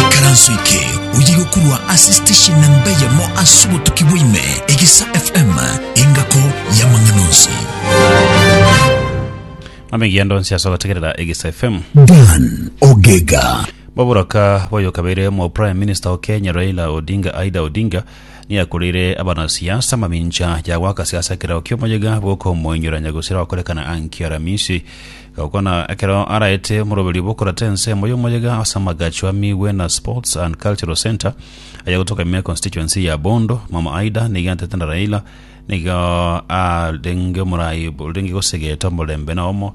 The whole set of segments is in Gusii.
Ekaranso eke oye gokurwa ase station namba eyemo ase obotuki bwaime egesa fm engako y'amang'ana onsi amegendo nsi ase ogotegerera egesa fm dan ogega boburoka boyokabeire omwa prime minister o kenya raila odinga aida odinga Niakoreire abanasiasa amamincha ya goaka siasa ekero ki'omoyega bw'okomoinyorania gose okorekana Anki-Aramisi, gokwana ekero araete omoroberi bw'okorata ensemo y'omoyega ase amagacho a Miwena Sports and Cultural Centre aya gotoka ime constituency ya Bondo. Mama Aida nigo atete na Raila nigo arenge omorai orenge gosegete omorembe na omo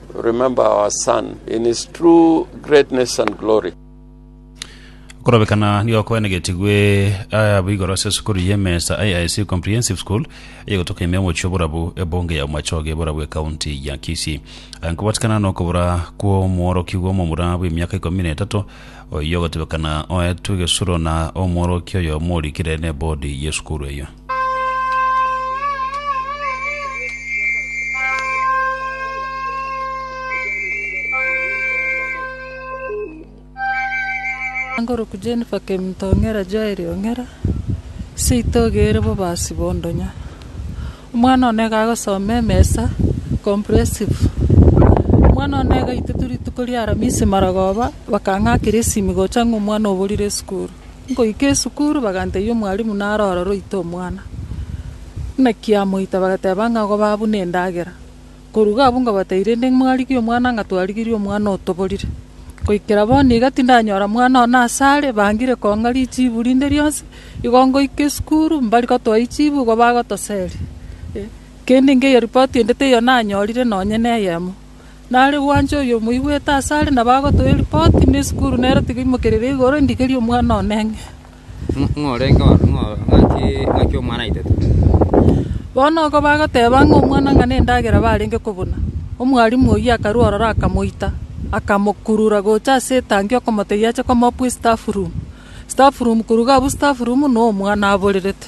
Remember our son in his true greatness and glory. Okorobekana nigo kwenegetigwe eh, abwo igoro ase esukuru y'emesa AIC Comprehensive School eyegotoka ime omochie oborabu ebonge ya Omachoge borabu ekaunti ya Kisii Aya nkobatikana nokobora kw'omworokigwa omomura bw'emiaka ikomi na etato oyio ogotebekana oetwe gesuro na omworokia oyo omorikire n'ebodi y'esukuru eyio Ngoroku Jennifer Kemto Ong'era Joel Ong'era, seito ogeire bobasi bondonya. Omwana one iga agosoma emesa, comprehensive. Omwana one iga aitete rituko ria aramisi marogoba, bakang'akera esimi gocha ng'a omwana oborire esukuru. Nkoika esukuru bagantebia omwalimu naro ororo oite omwana. Buna kiamoita bagateba ng'a goba abwo nendagera. Koruga abwo ngobatebia rende mwarigie omwana ng'a twarigirie omwana otoborire. Goikera bono iga tindanyora mwana one ase are, bangire kong'a richibu rinde rionsi. Igo ngoika esukuru mbari gotoa echibu igo bagotoseria. Kende nkeiyo ripoti ende teiyo nanyorire nonye neyemo. Nare gwancha oyomoigwete asare na bagotoa eripoti, na esukuru nero tiga imokerire igoro endigerie omwana one ng'e. Ng'a orenge oo, ng'a ng'aki, ng'aki omwana aitete. Bono oko bagoteba ng'a omwana ng'a nendagera barenge kobuna, omwalimu oyio akarua ororo akamoita, akamokurura gocha ase etangi okomotebia ache komoa bwe staff room. Staff room koruga abwo staff room noo omwana aborerete.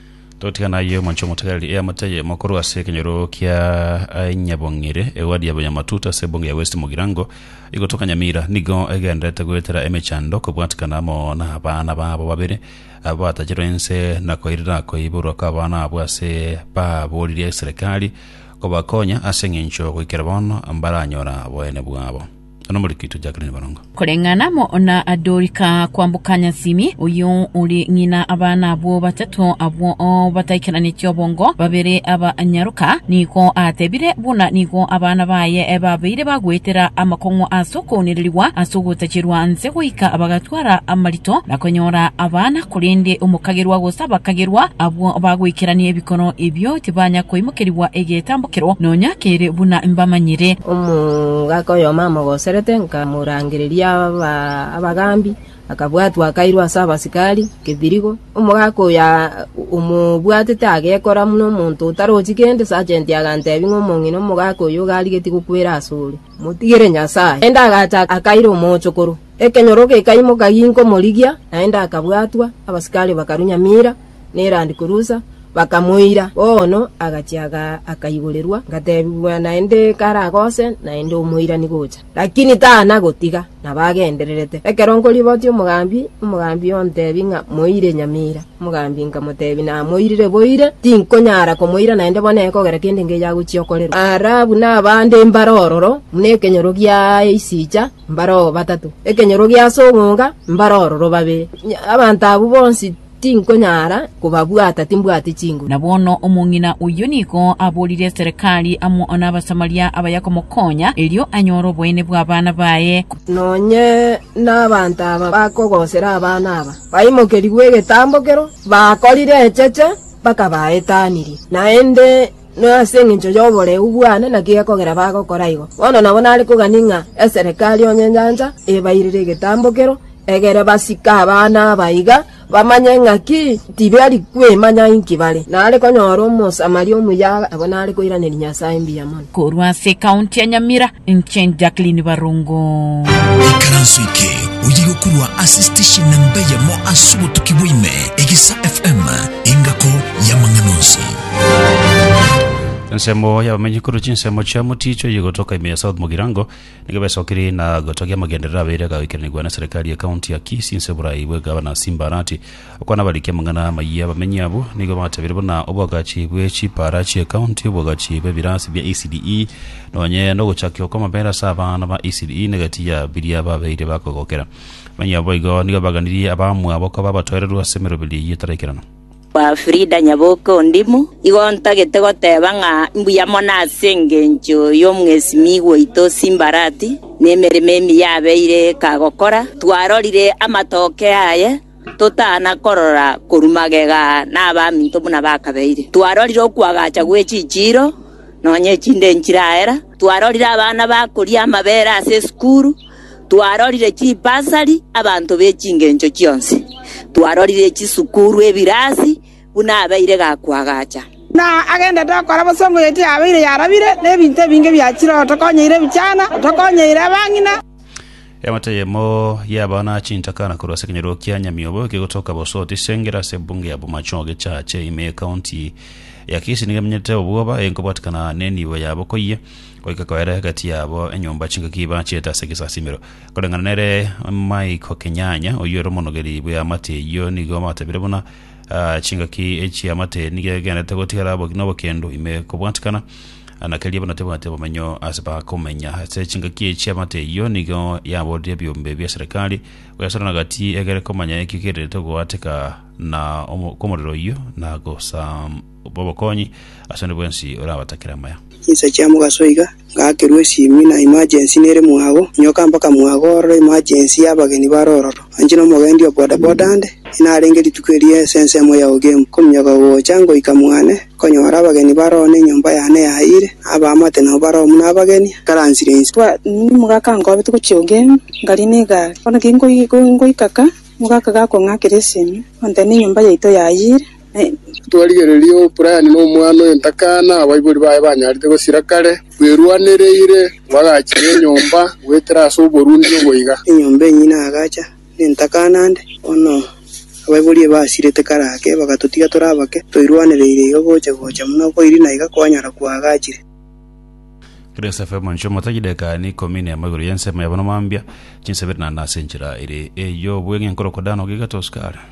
Totigana ayio omonche omotegereri eamoteye mokorwa ase ekenyoro kia Nyabong'ire, ewadi ya Banyamatuta ase ebunge ya West Mugirango, igotoka Nyamira, nigo egendererete goetera emechando kobwatikana amo nabana babo babere abatachirwe ense na koirera koiborwa kw'abana abwo ase baboririe eserekari kobakonya ase engencho goikera bono mbaranyora boene bwabo. Nonya nomoriki tochakeranie borongo. Koreng'ana amo na Dorika kwamboka Nyasimi, oyio ore ng'ina abana abwo batato abwo bataikeranetie obongo, babere aba nyaroka, nigo atebire buna nigo abana baye babeire bagoetera amakong'u ase okounererigwa ase ogotacherwa nse goika bagatwa Kwara amarito na konyora abana, korende omokagerwa gose abakagerwa abwo bagoikerania ebikoro ebio tibanya koimokerigwa egetambokero nonya kere buna mbamanyire. Omogaka oyomo amogoserete, nkamorangereria abagambi, akabwatwa akairwa ase abasikari kebirigo. Omogaka oyo omobwatete agekora buna omonto otarochi kende, sajenti agantebi ng'a omong'ina omogaka oyo iga arigetie gokwera asore, motigere Nyasae. Naende agacha akaira omochokoro. Ekenyoro gekaimoka ginkomorigia, naende akabwatwa, abasikari bakarunya mira na erandi kurusa, bakamoira. Bono agachia aga- akaiborerwa, ngatebigwa naende karagose naende omoirani gocha. Lakini tana gotiga, nabo agendererete. Ekero nkoribotia omogambi, omogambi ontebie ng'a moire nyamira. Omogambi nkamotebia namoirire boire, tinkonyara komoira naende bono ekogera kende ngeyo agochia okorerwa. Ara buna abande mbare ororo, buna ekenyoro giaye isicha, mbare oo batato, ekenyoro gi'ase ong'onga, mbare ororo babere. Abanto abwo bonsi tinkonyara kobabwata, timbwati chinguru. Na bono omong'ina oyio nigo aborire eserekari amo n'Abasamaria abaya komokonya, erio anyore oboene bw'abana baye. Nonye nabanto aba bakogosera abana aba, baimokerigwe egetambo kero, bakorire echeche, bakabaetanirie. Naende. Nase engencho y'oboreu bwane naki gekogera bagokora igo. Bono nabo nare kogania ng'a eserekari onye enyancha ebairire egetambokero, egere basike abana aba iga, bamanye ng'aki tibari kwemanya inki bare. Nare konyora Omosamaria omuya abwo nare koiraneria Nyasae mbuya mono. Korwa ase ekaunti ya Nyamira, Inche Jacqueline Barungu. Ikaranso eke oye gokurwa ase station na mbeyemo ase obotuki bwaime egesa FM engako y'amang'ana onsi. ensemo y'abamenyi korwa chinsemo chia moticho oyo gotoka ime ya south mogirango nigo besokiri na gotogia amagenderero abeire agagoikanigwa na serikali ya county ya kisi nse borai bw'egavana simba arati Okwana barikia amang'ana amayia abamenyi abwo nigo bagatebeire buna oboagachi bwe chipaara chi'ekaunti, oboagachi bw'ebirasi bia ECDE, nonye nogochakigwa kw'amabera ase abana ba ECDE negatiya biria babeire bakogokera. Abamenyi abwo igo nigo baganirie abamwabo koba abatoereru ase emeroberi eyio etaraikerana. Kwa Frida Nyaboke Ondimo, igo ntagete goteba ng'a mbuya mono ase engencho y'omwesimigwa oito Simbarati, nemeremo emiya abeire kagokora. Twarorire amatokeo aye totana korora korwa magega nabaminto buna bakabeire. Twarorire okwagacha gwe chichiiro, nonya echinde nchiraera, twarorire abana bakoria amabere ase esukuru, twarorire chibasari abanto be chingencho chionsi, twarorire chisukuru, ebirasi, buna abeire gakwagacha. Na agendete okora bosa omoyoti yabeire yarabire, na ebinto ebinge biachire otokonyeire ebichana, otokonyeire abang'ina. Eamate eyemo y'abana chintakana korwa ase ekenyoro kia Nyamiobo ekegotoka Bosoti ase engera ase ebunge ya Bomacho ogechache ime y'Ekaonti ya Kisii nigo emenyete obwoba enkobwatikana nenibo yabo koyia goika koera egati yabo enyomba chingaki bachiete ase egesasimero koreng'ana nere Michael Kenyanya oyio ere omonogeri bw'eamate eyio nigo abatabire buna Aa, chingaki echi'amate nigo egenderete gotigara obo- n'obokendo ime kobwatikana, Aa, na keria bono tebwate obomenyo ase bakomenya. Ase chingaki echi'amate eyio nigo yaborire ebiombe bia serikali goyasorana gati egere komanya ekio kerirete goateka na omo- kw'omorero oyio na gosam- bw'obokonyi ase onde bwensi orabatakere amaya. Chinsa chia mogaso iga, ngakerwa esiimi na emergency nere mwago, nyoka mpaka mwago ororo emergency ya abageni bare ororo. Anche nomogendi o bodaboda ande, inarenge rituko erio ase ensemo ya Ogemu. Kominyoka gocha ngoika mwane, nkonyora abageni bare oo na enyomba yane yayiire, na abaamate nabo bare oo buna abageni, nkaransire inse. Bwanini mogaka ankobe togochia Ogemu, nkaria na egari. Bono ki ngoika ka, mogaka gakong'akera esiimi, ontebia na enyomba yaito yayiire. Twarigereria O'Brien na omwana oye Ntakana, abaibori baye banyarete gosira kare, bwerwanereire bagachiga enyomba goetera ase oborundi obo iga. Enyomba enyine agacha ne Ntakana ande, bono abaibori eye basirete kare ake, bagatotiga tore abake, toirwanereire iga gocha gocha buna okoirina iga kwanyara kwagachire. Grace FM inche omotagi edageka ane ikomi na emo igoro y'ensemo yabo na mambia, chinsa ibere naende ase enchera ere ey'obweng'e nkorokwa Dan Ogiga to Oscar.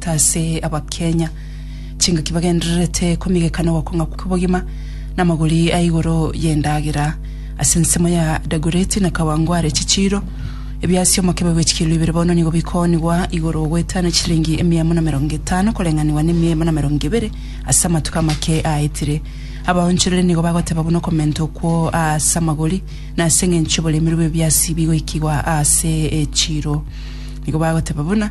Ase Abakenya, chingaki bagendererete komigeka na ogokong'a kw'obogima namagori a igoro y'endagera. Ase ensemo ya Dagoretti na Kawangware chichiiro, ebiasio mokebe bwe chikelo ibere bono nigo bikoonigwa igoro goetana chilingi emia emo na emerongo etano koreng'anigwa na emia emo na emerongo ebere ase amatuko amake aetire. Abaonchoreri nigo bagoteba buna okomenta okwo ase amagori na ase eng'encho oboremeru bw'ebiasi bigoikigwa ase echiiro. Nigo bagoteba buna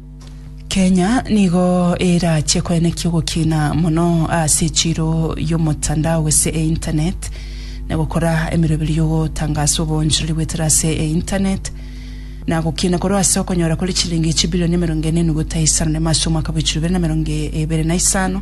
Kenya nigo erache koenekia ogokina mono ase echiro y'omotandao gose e internet na gokora emeroberio y'ogotangasa obonchorori bwetera ase e internet na gokina korwa ase okonyora kore chilingi chibilioni emerongo ene enuguta isano na emo ase omwaka bwa echiro ibere na emerongo ibere na isano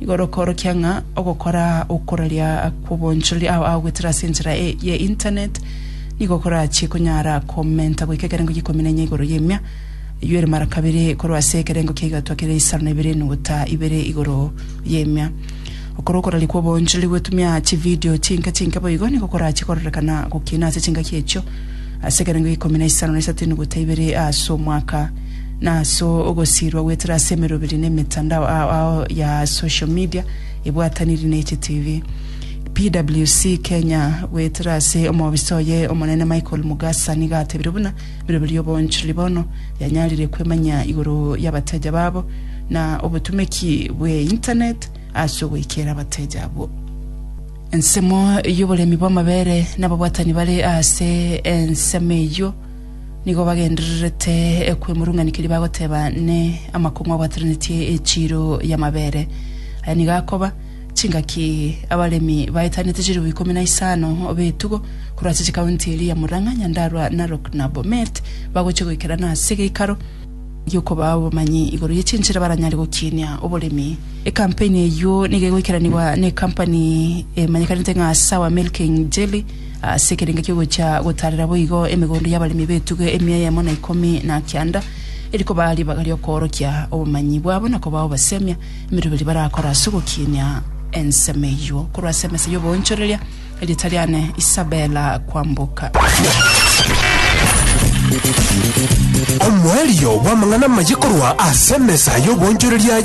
Nigo rokoorokia ng'a ogokora okoraria kw'obonchoreri ao agoetera ase enchera e, ye internet nigo korachie konyara komenta goika ekerengo g'ikomi na inya igoro y'emia eywo ere mara kabere korwa ase ekerengo kia igatwa kere isano na ibere enuguta ibere igoro y'emia. Gokora okoraria kw'obonchoreri gwetumia chividio chinke chinke boigo nigo korachie kororekana gokina ase chingaki echio ase ekerengo g'ikomi na isano na isato enuguta ibere ase omwaka na ase ogosiirwa goetera ase emeroberi na emetandao ao ao ya social media ebwataniri ne GTV. PWC Kenya goetera ase omobisa oye omonene Michael Mugasa niga atebire buna emeroberi y'oboonchoreri bono yanyarire kwemanyia igoro y'abateja babo na obotumeki bwe internet ase ogoikera abateja abwo. Ensemo y'oboremi bw'amabere n'ababwatani bare ase ensemo eyio Nigo bagendererete kwemurung'anikeria bagoteba ne amakong'u abwatananetie echiiro y'amabere. Aya nigo akoba chingaki abaremi baetanete chilifu ikomi na isano b'etugo korwa ase chikaunti eria ya Murang'a, Nyandarua, Narok na Bomet bagochia goikerana ase geikaro gi'okobaa obomanyi igoro ye chinchera baranyare gokiinia oboremi. Ekampeni eyio nigo egoikeranigwa nekampani emanyekanete ng'a Sour Milking Jelly ase ekerengo ki'ogochia gotaarera boigo emegondo y'abaremi b'etugo emia eyemo na ikomi na kianda, eri kobaa ribaga ri'okoorokia obomanyi bwabo na kobaa obasemi emeroberi barakore ase ogokiinia ensemo eyio korwa ase emesa y'oboonchoreria. Erieta riane Isabella Kwamboka. Omoerio bw'amang'ana amaye korwa ase emesa y'oboonchoreria